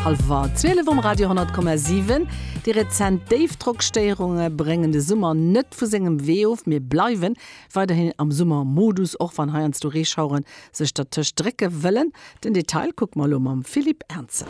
Halwer 12 um Radio 10,7. Déi rezent Déifdrockstéierunge bréngen de Summer net vu sengem Wee of. Mir bleiwe weiderhin am Summermodus, och wann heiansdo Reeschauere sech dertëscht drécke wëllen. Den Detail kucke mer elo mam Philippe Ernzer.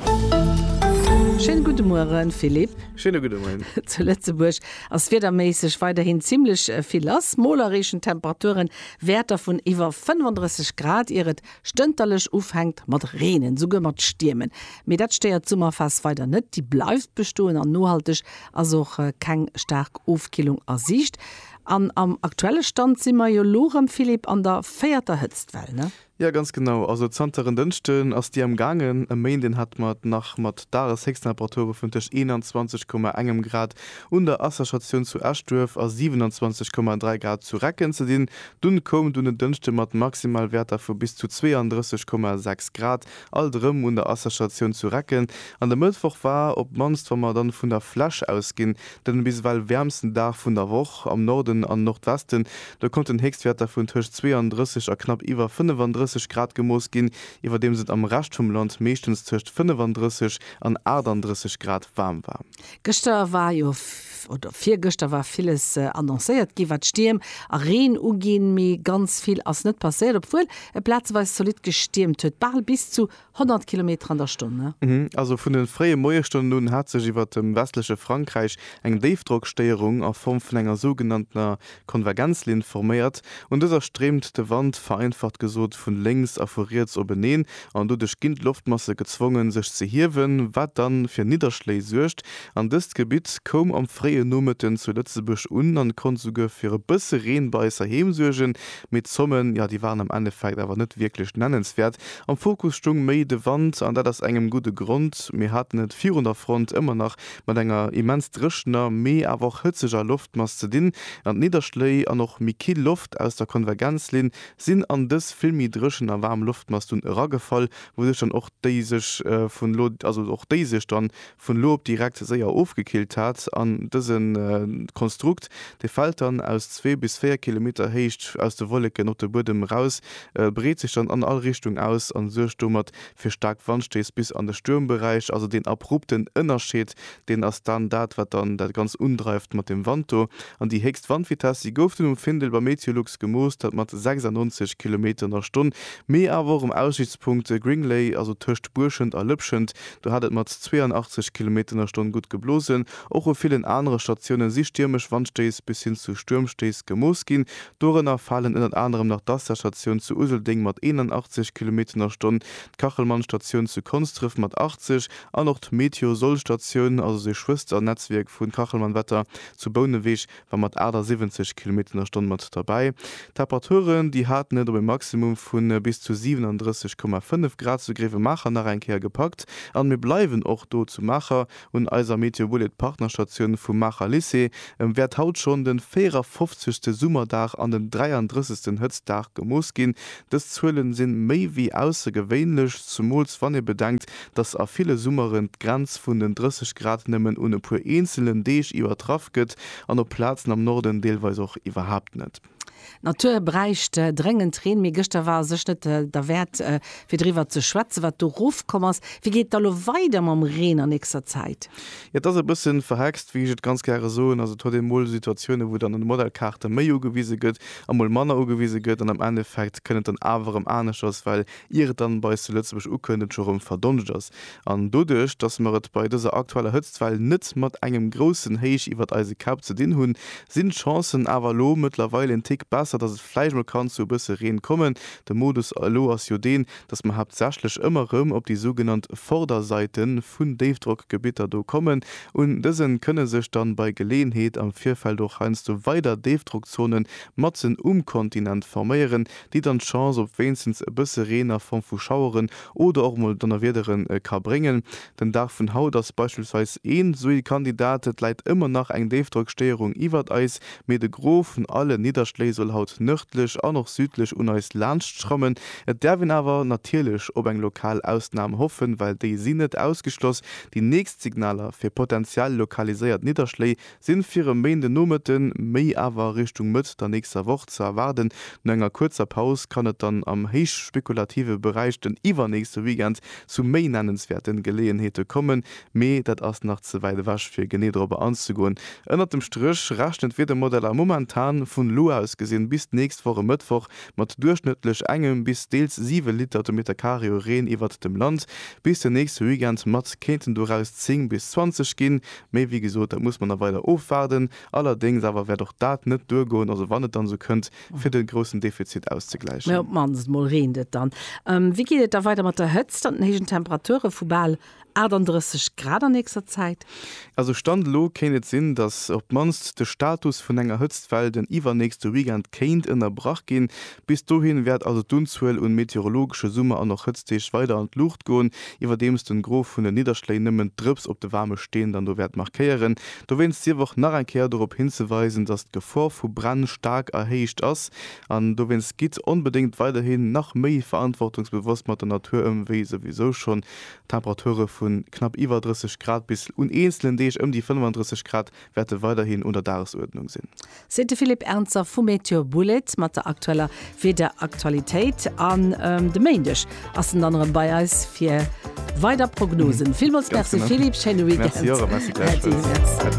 Schéine gudde Mueren, Philippe. Schéine gudde Moien. Zu Lëtzebuerg ass wiederméisseg weiderhin zimmlech vill lass. Mol erreechen d'Temperaturen Wäerter vun iwwer 35 Grad, ier et Stënterlech ufänkt mat reenen, souguer mat stiermen, mee dat stéiert d'Summerphas weider net, déi bleift bestoen an nohalteg ass och keng staark Ofkillung a Siicht. An am aktuelle Stand si mer jo lo rëm, Philippe, an der véierter Hëtztwell, ne? Jo, ganz genau, also zanter en Dënschden ass déi am gaangen. E Méinden hat mer et nach mat Dageshéchsttemperature vun tëscht 21,1 Grad un der Asserstatioun zu Eschduerf a 27,3 Grad zu Recken ze dinn, Dunn koum et un en Dënschde mat Maximalwäerter vu bis zu 32,6 Grad alt erëm un der Asserstatioun zu Recken an de Mëttwoch war, op d'mannst wa mer dann vun der Fläch ausginn, den bis ewell wäermsten Dag vun der Woch. Am Norden an Nordwesten, do konnten Héchstwäerter vun tëscht 32 a knapp iwwer 35 Grad gemooss ginn, iwwerdeems et am Rescht vum Land meeschtens tëscht 35 an 38 Grad waarm war. Gëschter war jo, oder virgëschter war villes annoncéiert ginn, wat Stierm a Reen uginn, mee ganz vill ass net passéiert, obwuel et plazeweis zolidd gestiermt huet, bal bis zu 100 Kilometer an der Stonn. Also vun de fréie Moiesstonnen un hat sech iwwert dem westleche Frankräich eng Déifdrockstéierung a Form vun enger sougenanntener D'Konvergenzlinn forméiert un dëser Streemt de Wand, vereinfacht gesot, vun lénks a vu riets openeen an doduerch ginn d'Loftmasse gezwongen sech ze hiewen, wat dann fir Nidderschléi suergt. An dëst Gebitt koum am fréien Nomëtten zu Lëtzebuerg un an konnt souguer fir e bësse Reen bei eis heiheem suergen, mee d'Zommen, jo déi waren am Endeffekt awer net wierklech nennenswäert. Am Fokus stung méi de Wand an dat aus engem gudde Grond, mir haten et virun der Front ëmmer nach mat enger immens dréchener, mee awer och hëtzeger Loftmass ze dinn, an d'Nidderschléi an och méi kill Loft aus der Konvergenzlinn sinn an dës vill méi dréchen a waarm Loftmass dunn eragefall, wouduerch dann och déi sech vun elo, also och déi sech dann vun elo op direkt séier ofgekillt hat. An dëse Konstrukt, dee fält dann aus zwee bis véier Kilometer Héicht aus de Wolleken op de Buedem eraus, breet sech dann an all Richtung aus an suergt domat fir staark Wandstéiss bis an de Stuermberäich. Also deen abrupten Ënnerscheed, deen ass dann dat, wat dann dat Ganzt undreift mat dem Wand do. An déi héchst Wandvitesse, déi gouf dunn um Findel bei Meteolux gemooss, dat mat 96 Kilometer an der Stonn. Mee awer och um Aussichtspunkt Gringlay, also tëscht Buerschent a Lëpschent, do hat et mat 82 Kilometer an der Stonn gutt geblosen. Och u villen anere Statioune si stiermesch Wandstéiss bis hin zu Stuermstéiss gemooss ginn. Dorënner falen ënnert anerem nach d'Assasstatioun zu Useldeng mat 81 Kilometer a Stonn, d'Kachelmannstatioun zu Konsdref mat 80 an och d'Meteosol-Statioun, also de Schwëster-Netzwierk vun Kachelmannwetter, zu Bouneweg war mat 78 Kilometer a Stonn mat derbäi. D'Temperaturen, déi haten et op e Maximum vu bis zu 37,5 Grad zu Gréiwemaacher nach eng Kéier gepackt an mir bleiwen och do zu Maacher, Un eiser Meteobullet Partnerstatioun vum Maacher Lycée wäert haut schonn den 54 te Summerdag an den 33 ten Hëtztdag gemooss ginn. Dës Zuelen sinn méi wéi aussergewéinlech, zumools wann ee bedenkt, dass a ville Summeren d'Grenz vun den 30 Grad nëmmen un e puer eenzelen Deeg iwwertraff gëtt an op Plazen am Norden deelweis och iwwerhaapt net. D'Natur bräicht dréngend Reen, mee gëschter war sech net derwäert, fir driwwer ze schwätzen, wat do rofkomm ass. Wéi geet et da lo weider mam Reen an nächster Zäit? Jo, et ass e bësse verhext, wéi ech et ganz gäre soen. Also et huet ee mol Situatiounen, wou dann an de Modellkaarte méi ugewise gëtt a mol manner ugewise gëtt an am Endeffekt kënnt et dann awer erëm aneschters, well ier et dann bei eis zu Lëtzebuerg ukënnt, et scho rëm verdonscht ass. An doduerch, dass mer et bei dëser aktueller Hëtztwell net mat engem groussen Héich iwwert eise Käpp ze dinn hunn, sinn d'Chancen awer elo mëttlerweil en Tick besser, dass et vläicht mol kann zu e bësse Reen kommen. De Modus elo ass jo deen, dass mer haaptsächlech ëmmer rëm op déi sougenannt Vorderseite vun Déifdrockgebitter do kommen. Un dëse kënne sech dann bei Geleeënheet am Virfeld och heiansdo weider Déifdrockzonen matzen um Kontinent forméieren, déi dann d'Chance op wéinstens e bësse Reen a Form vu Schaueren oder och mol Donnerwiedere ka bréngen. Den Dag vun haut ass beispillsweis een sou ee Kandidat, et läit ëmmer nach eng Déifdrockstéierung iwwert eis, mee de Gros vun alle Nidderschléi soll haut nërdlech an och südlech un eis laanscht schrammen. Et däerf een awer natierlech op eng lokal Ausnam hoffen, well déi sinn net ausgeschloss. Déi nächst Signaler fir potentiell lokaliséiert Nidderschléi sinn fir e Méindenomëtten, méi awer Richtung Mëtt der nächster Woch ze erwaarden. No enger kuerzer Paus kann et dann am héichspekulative Beräich den iwwernächste Weekend zu méi nennenswäerte Geleeënheete kommen, mee dat ass nach ze wäit ewech fir genee dorobber anzegoen. Ënnert dem Stréch rechnen d'Wiedermodeller momentan vun elo aus gesinn bis d'nächst Woch e Mëttwoch mat duerchschnëttlech engem bis deels siwe Liter de Meter Carré u Reen iwwert dem Land. Bis den nächste Weekend mat kéinten doraus 10 bis 20 ginn, Mee wéi gesot, dat muss mer nach weider ofwaarden. Allerdéngs awer wäert och dat net duergoen, also wann et dann esou kënnt, fir de groussen Defizit auszegläichen. Mä op d'mannst mol reent et dann. Wéi geet et da weider mat der Hëtzt an den héijen Temperature vu bal 38 Grad an nächster Zäit? Also Stand elo kéint et sinn, datt op d'mannst de Status vun enger Hëtztwell den iwwernächste Weekend kéint ënnerbrach ginn. Bis dohin wäert also d'Unzuel un meteorologesche Summer an och Hëtztdeeg weider an d'Luucht goen, iwwerdeems den Gros vun den Nidderschléi nëmmen d'Drëps op de waarme Steen dann do wäert markéieren. Dowéinst sief och nach eng Kéier dorop hinzeweisen, dass d'Gefor vu Bränn staark erhéicht ass an dowéinst gitt onbedéngt weiderhin nach méi verantwortungsbewosst mat der Natur ëm, wéi souwisou schonn Temperature vu knapp iwwer 30 Grad bis un eenzelen Deeg ëm déi 35 Grad wäerte weiderhin un der Dagesuerdnung sinn. Seet de Philippe Ernzer vu Meteor Bullet mat der aktueller Wiederaktualitéit. An de Méindeg ass en dann erëm bei eis fir weider Prognosen. Villmools Merci Philippe, schéine Weekend. Merci och a Merci gläichfalls.